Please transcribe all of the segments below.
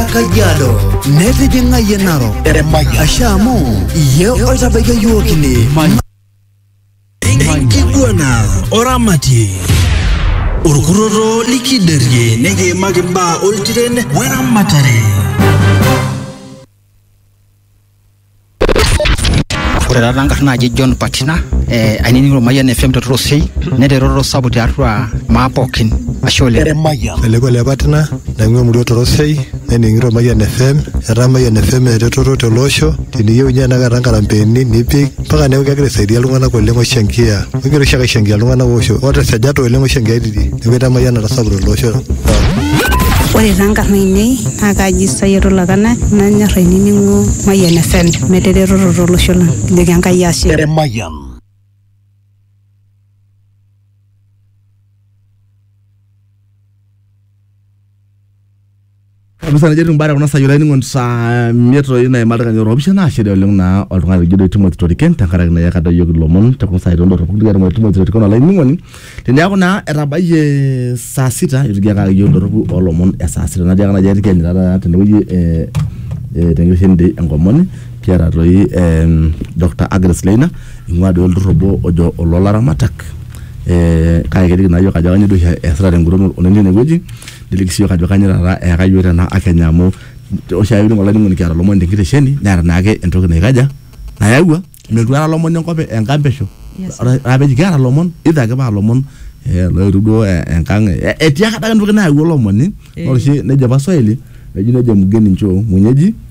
Kajiado, netijing'a yie Narok, ashe amu iyie oitabaikia iyiook ine. Enkiguana oramatie. Orkurroto likiderie nikiimaki imbaa oltiren weramatare. Ore taata nkarn naaji John Patina eh, ainining'o Ormayian FM te Torosei neeta eretoto sapuk tiatua maa pookin ashe oleng. Eleko le Patina naing'ua emurua Torosei nening'ito Ormayian FM etaa Ormayian FM eretoto tele osho teniyieu ninye tenakata nkarambeeni nipik mpaka neeku kegira aisaidia iltung'anak oleng oishankia. Kegira oshiake aishankia iltung'anak oisho oota esajata oleng oishankiaitie. neeku etaa emayian natasapuka tele osho Ore taa nkarn ainei naa kaaji Sayed Olakana nanyor ainining'o Mayian FM metaa eretoto tolosho lang. Kijoki Enkai ashe. Mayian. kabisa nejo timbare kuna sayiolo ainingo saa miet toi naima ildaikani oropishana naashere oleng naa oltung'ani lijo doi Timothy Toriken tenkaraki naa eyakata iyiook ilomon te kuna saai tondorropu nikigira aitung'ua Timothy Toriken olainining'oni teneeku naa etabayie saa sita itigiakaki iyiook indorropu olomon e saa sita natiaka naaji aitiki eenyu taata tenewueji eh, eh, tenkitesheni dei enkomoni kiata toi em, Dr. Agnes Leina ing'ua doi olturrur obo ojo oloolaramatak eh, kake keliki naa iyiook ajo kanyoo doi oshi eesita tenguton oleng tinewueji niliki siyiok ajo kanyoo taata eyaka yiok tena akenya amu oshiake kining olainining'oni kiata ilomon tenkitesheni neeta naake entoki naikaja nayawua metuata ilomon enkop e- enkampesho Yes, sir. Ore- ore peji kiata ilomon either ake paa ilomon eh, loetuo duo eh, enkang eh, etiaka adake entoki nayawua olomoni Eh. ore oshi nejo apa swahili eji nejo mgeni nchoo mwenyeji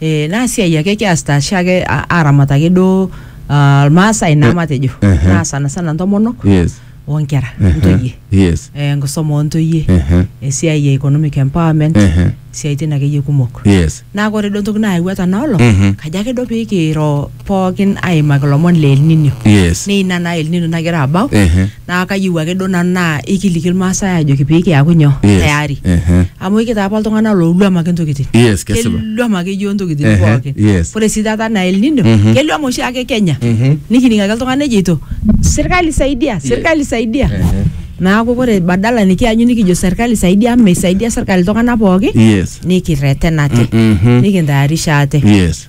Eh, naa siai ake kiasita ashe ake a- aramat ake duo ah, irmaasai naa matejo ehe. naa sana sana ntomonok yes onkera ehe, ntoyie yes eh, enkisuma ontoyie ehe, esiai e economic empowerment ehe, siaitin akeyie kumok yes naa ore duo entoki naayawua tena olong Mhm. kajo ake duo pee kiro pookin aimaki ilomon le elninio yes naa ina naa elninio nagira abau ehe. naa kayieu ake duo nanu naa ikiliki irmaasai ajoki pee kiaku nyoo Yes. tayari Ehe. amu ikitaa apa iltung'anak looluam ake ntokitin Yes, kesipa. keluam ake yioo ntokitin Ehe, pookin yes. ore sii taata naa El Nino Mhm. keluam oshi ake Kenya Mhm. nikining ake iltung'anak ejeito sirkali saidia sirkali saidia Ehe. naaku ore badala nikianyu nikijo sirkali saidia amu meisaidia sirkali iltung'anak pookin Yes. nikirretenate Mhm. nikintayarisha ate Yes.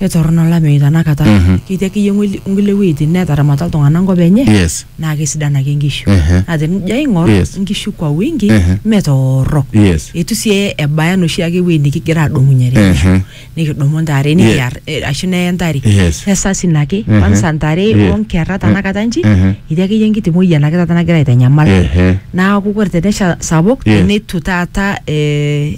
Etorrono olameyu tanakata. Mhm. Ketii akeyie ng'ueli- nkulie wueitin neetaramata iltung'ana enkop enye Yes. naa kesidan ake nkishu. Ehe. Naa tenijo aing'or Yes. nkishu kwa wingi Ehe. mme torrok. Yes. Eitu sii ebaya enoshi ake wuei nikigira aadumunye te nkishu. Ehe. Nikidumu ntare Ye- nikiar eh, ashu neye ntare. Yes. Esasin ake. Ehe. Kwanza ntare Ye- o nkerra tanakata nji Ehe. etii akeyie enkiti moyian ake taata nagira aitanyamal. Ehe. Naaku kore tenesha sapuk Yes. neitu taata eh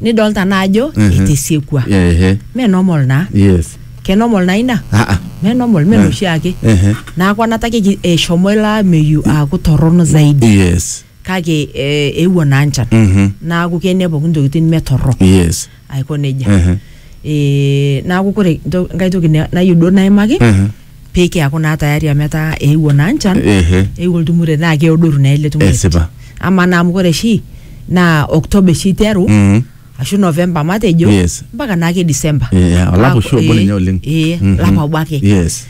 nidolta naa ajo Mhm. itisiekua Ehe. me normal naa Yes. ke normal naa ina Ah, ah. me normal me noshi ake Ehe. naaku anatake eshomo ilo ameyu aaku torrono zaidi Yes. kake eh, eewuo naa nchan Mhm. naaku kene pooki ntokitin me torrok Yes. aiko nejia Ehe. Eh, naaku kore nto- nkae toki na- nayieu duo naimaki Mhm. pee kiaku naa tayari amu etaa eewuo naa nchan Ehe. eewuo oltumurei naa keodoru naa ele tumurei Esipa. ama naa amu ore oshi naa October oshi iteru Mhm. ashu November matejo Yes. mpaka naake December Yeah, olapa Aaku- oshi obo ee, ninye oleng. ee, Mhm. olapa obo ake Yes.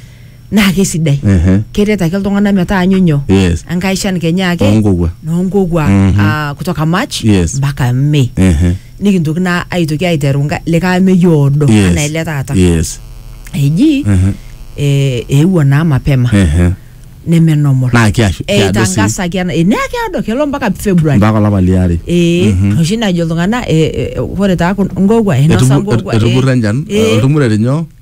naa kesidai Ehe. keret ake iltung'anak metaanyu nyoo Yes. enkai shan kenya ake Oonkokua. noonkokua Mhm. ah, kutoka March Yes. mpaka May Ehe. nikintoki naa aitoki aiteru nka- likae ameyu oodo Yes. anaa ele taata Yes. eji Mhm. eh, eewuo naa mapema Ehe. neme normal Naa kiashu- kiado sii. eitangasaki ena eh, naa keado kelo mpaka february Mpaka olapa liare. ee oshi najo iltung'anak eh, eh, ore taa kun- ngogwa inosa Etubu- ngogwa eh. etubura enchan Eh, oltumurere nyoo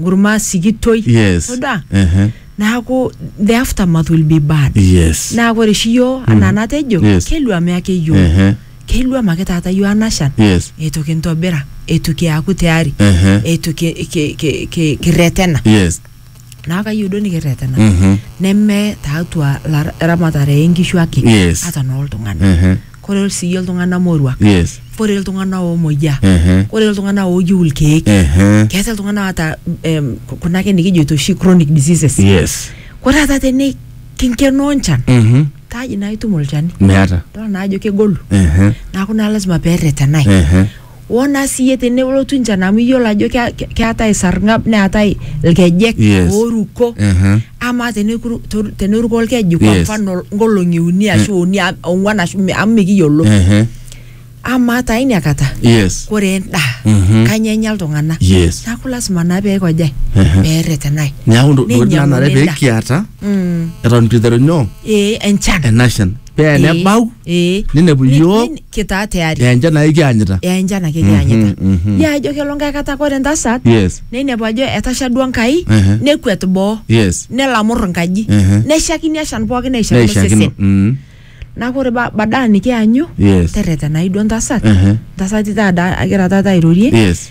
nkurma sikitoi Yes. todua Ehe. neaku the aftermath will be bad Yes. naa ore oshi yioo anaa natejo Yes. keluame ake yioo Ehe. keluam ake taata yioo anashan Yes. eitu kintobira eitu kiaku tayari Ehe. eitu ki- ki- ki- ki- kirretena Yes. naa kayieu duo nikirretena Mhm. neme taatua lar- eramatare enkishu ake Yes. ata nooltung'anak Ehe. koree sii iltung'ana moruak. Yes. Koree iltung'ana omoyia. Ehe. Koree iltung'ana oyieu ilkeek. Ehe. Keetae iltung'ana oota em, kuna ake nikijoito oshi chronic diseases. Yes. Ore taata teni kinkenoo enchan Mhm. kaji naa itum olchani. Meeta. Idol naa ajo kegolu. Ehe. Neaku naa lazima peretenae. Ehe. woo naa siyie tenelotu enchan amu iyiolo ajo kea- ke- keetae esarng'ab neetae ilkejek Yes. ooruko Mhm. amaa teneku- to- teneruko olkeju kwa Yes. mfano nkolong'i uni ashu uni am- ong'uan ashu mi- amu mikiyiolo Ehe. amaa taa ina kata Yes. kore endaa Mhm. kanya enya iltung'anak Yes. neeku lasima naa peekojae Ehe. peerretenae Neeku ntokitin Neinyiang'uni nanare pee endaa. kiata Mm. eton itu iteru nyoo ee enchan enashan pee nebau eh ninepu Ni- iyiook ni- kitaa tayari aa enchan ake kianyita yaa enchan ake kianyita Mhm, mhm. yaa ajo kelo nkae kata kore entasat yes neinepu ajo etasha duo Enkai Ehe. nekuet boo yes nelamur enkaji Ehe. neshakini eshan pookin neishakino neishakino sesen Mm. neaku ore ba- badaa nikianyu yes terretenai duo entasat Ehe. ntasati taata agira taata airorie yes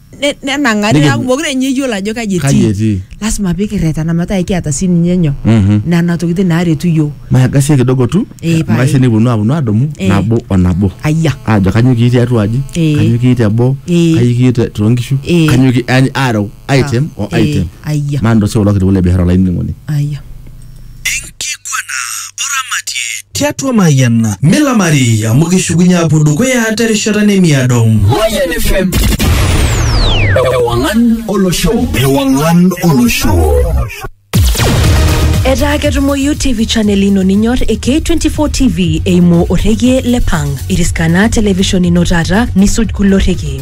ne- nenang'ari Nikipu- neaku mokure ninye eyiolo ajo kaji Kaji etii etii? lasima pikirretena metaa ekiata sii ninye nyoo Mhm. nena tokitin naaretu yiok maagasie kidogo tu Eh, pae. maisha nikiponu aponu adumu Eh. nabo o nabo ayia ajo kanyo kii tiatua aji Eh. kanyo kii teboo Eh. kanyo kii te- toonkishu Eh. kanyo kii yani areu item o Eh, item ayia maa ndo sio kulo kitu le biashara olainining'oni ayia Enkiguana o Ramatie. Tiatua Mayian. Milamari amu kishukunye apuo dukuya terishata nemiado. Mayian FM. Ewangan olosho. Ewangan olosho. Etaa ketumoyu TV channel ino ninyor e K24 TV eimu orrekie le Pang. Iriskana television ino taata nisuj kulo rrekie.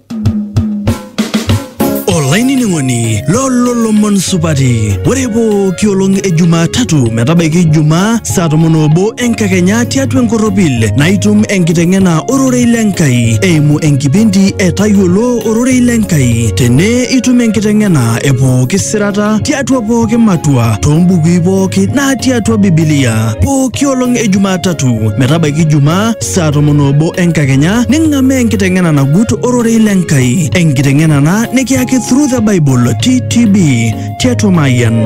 olainining'oni lolo lomon supati ore pooki olong e jumatatu metabaiki jumaa saa tomon obo enkakenya tiatua enkorropil naitum enkiteng'ena ororei le nkai eimu enkipindi e tayiolo ororei le nkai tene itum enkiteng'ena e pooki sirata tiatua pooki matua toombukui pooki natii atua bibilia pooki olong e jumatatu metabaiki jumaa saa tomon oobo enkakenya ning'amaa enkiteng'ena nagut ororei le Nkai, enkiteng'ena ena nikiyaki Through the Bible TTB tiatua Mayian.